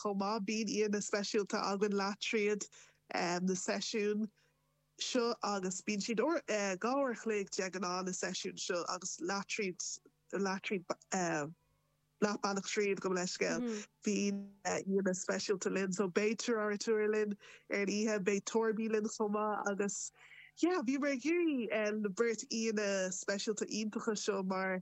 chomh maith. Bíonn aíonna speisialta againn leath tríd na seisiúin seo agus bíonn siad dhá uair a chloig de ghnáth na seisiúin seo agus leath tríd leath bealach tríd gabh mo leithscéal bíonn aíonna speisialta linn so beidh Torby linn ar an oíche, beidh Torby linn chomh maith agus yeah bhíomar ag iarraidh na beirt aíonna speisialta iontacha seo mar.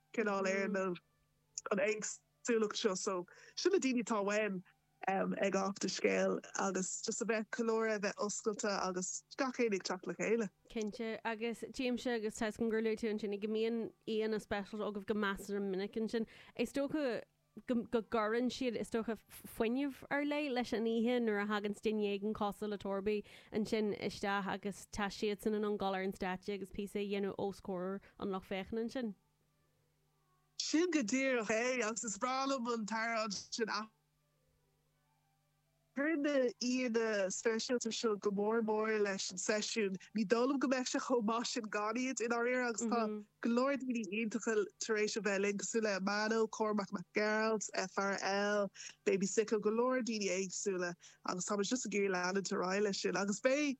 cineál éireannamh an éagsúlacht seo. So sin na daoine atá uainn ag Off the Scale agus just a bheith ag ceiliúradh, a bheith oscailte agus gach éinne ag teacht le chéile. Cinnte, agus tuigimse agus tá a fhios agam gur luaigh tú ansin go mbíonn aíonna speisialta agaibh go measartha minic ansin. Is dócha. go gcuireann siad, is dócha, fuinneamh ar leith leis an oíche nuair a thaganns duine éigin cosúil le Torby ansin isteach agus tá siadsan in ann dul ar an stáitse agus píosa a dhéanamh os comhair an lucht féachana ansin. Sin go díreach é agus is breá liom an tslí sin a. Cuireann na aíonna speisialta seo go mór mór leis an seisiún. Ní dóigh liom go mbeadh sé chomh maith sin gan iad, i ndáiríre, agus tá go leor daoine iontacha tar éis a bheith linn, cosúil le Amano, Cormac Mac Gearailt, FRL, Baby Sicko, go leor daoine éagsúla, agus táimid just ag iarraidh leanúint ar aghaidh leis sin. Agus beidh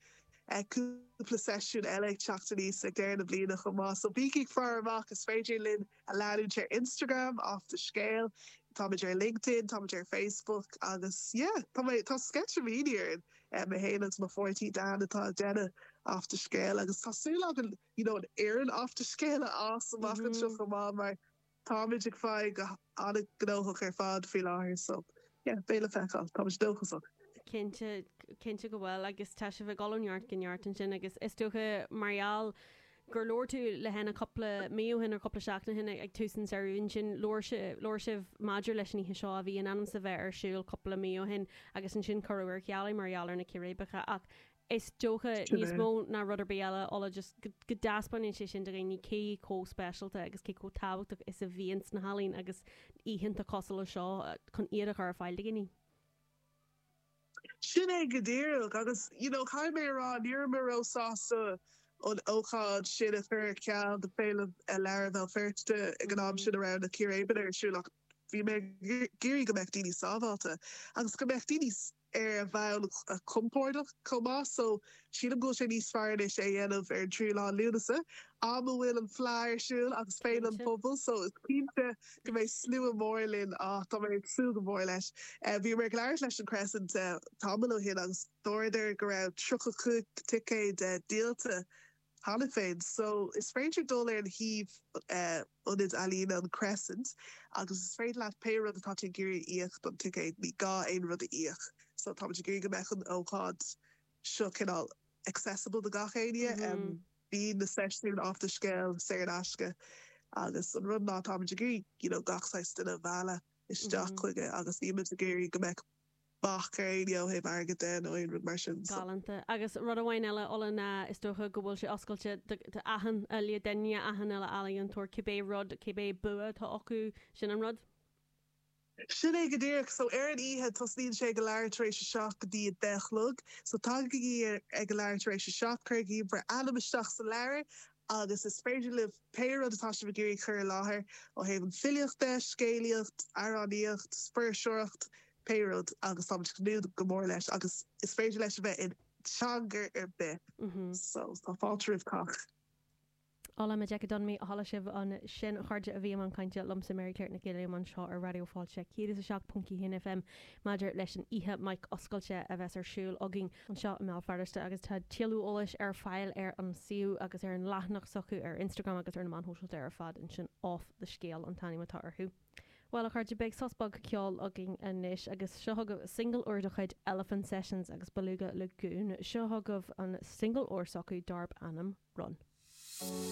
cúpla seisiún eile ag teacht aníos ag deireadh na bliana chomh maith, so bígí ag faire amach, is féidir linn a leanúint ar Instagram, off the scale, táimid ar LinkedIn, táimid ar Facebook agus yeah, tá mé, tá sceitimíní orainn, eh, mé féin agus mo pháirtí Dan atá ag déanamh off the scale agus tá súil againn, you know, an fhoireann off the scale a fhás amach anseo chomh maith mar táimid ag fáil go han-ghnóthach ar fad faoi láthair so yeah, beidh le feiceáil, táimid dóchasach. Cinnte, cinnte go bhfuil agus tá sibh ag dul ó neart go neart ansin agus is dócha mar gheall gur labhair tú le hÉanna cúpla mí ó shin, nó cúpla seachtain ó shin ag tús an samhraidh, ansin labhair sé, labhair sibh maidir leis an oíche seo a bhí in ainm is a bheith ar siúl cúpla mí ó shin agus ansin cuireadh ar ceal é mar gheall ar na círéibeacha ach is dócha níos mó ná rud ar bith eile, Ola, just go, go dtaispeánann sé sin do dhaoine cé chomh speisialta agus cé chomh tábhachtach is a bhíonns na healaíona agus oícheanta cosúil leis seo chun iad a chur ar fáil do dhaoine. Sin é go díreach agus you know caithfidh mé a rá ní raibh mé róshásta an ócáid sin a chur ar ceal do Féile Leabhar Bhéal Feirste ag an am sin a raibh na círéibeanna ar siúl ach bhí mé ag iarraidh go mbeadh daoine sábháilte agus go mbeadh daoine ar a bhfonn compordach chomh maith so Sílim go bhfuil sé níos fearr anois é a dhéanamh ar an tríú lá Lúnasa, am a bhfuil an Fleadh ar siúl agus Féile an Phobail, so is cinnte go mbeidh slua mór linn, ah tá mé ag súil go mór leis. Bhíomar ag labhairt leis an Chrescent tamall ó shin agus dúradar go raibh tríocha cúig ticéad díolta cheana féin, so is féidir dul ar an shuíomh ionad ealaíne an Chrescent agus is féidir leat pé rud atá tú ag iarraidh a íoc don ticéad, ní gá aon rud a íoc, so táimid ag iarraidh go mbeadh an ócáid. seo cineál accessible do gach éinne. Bhí na seisiúin Off the Scéal saor in aisce agus an rud ná táimid ag iarraidh you know gach saghas duine a mhealladh isteach chuige agus nílimid ag iarraidh go mbeadh bac ar éinne ó thaobh airgid de nó aon rud mar sin. So. Galánta. Agus rud amháin eile Ola ná is dócha go bhfuil sé oscailte do, do achan uile duine, achan uile ealaíontóir, cibé rud, cibé bua atá acu, sin an rud? Sin é go díreach. So, ar an oíche, tosnaíonn sé ag a leathuair tar éis a seacht go dtí a deich a chlog. So, tagaigí ag a leathuair tar éis a seacht, cuirigí bhur ainm isteach sa leabhar agus is féidir libh pé rud atá sibh ag iarraidh cur i láthair ó thaobh an filíocht de, scéalaíocht, amhránaíocht, fuirseoireacht, pé rud agus tá muid ag tnúth go mór leis agus is féidir leis a bheith in teanga ar bith. So, tá fáilte roimh cách. Ola Majekodunmi, Chuala sibh ansin a chairde a bhí i mbun cainte liomsa, Mary Claire Nic Uilliam, anseo ar Raidió Fáilte 107.1 FM maidir leis an oíche 'Mic Oscailte' a bheas ar siúl againn anseo i mBéal Feirste agus tá tuilleadh eolais ar fáil ar an suíomh agus ar an leathanach s'acu ar Instagram agus ar na meáin shóisialta ar fad ansin 'Off The Scéal' an t-ainm atá orthu. Bhuel, a chairde, beidh sos beag ceoil againn anois, agus seo chugaibh singil úr de chuid Elephant Sessions agus Beluga Lagoon. Seo chugaibh an singil úr s'acu dárb ainm Run.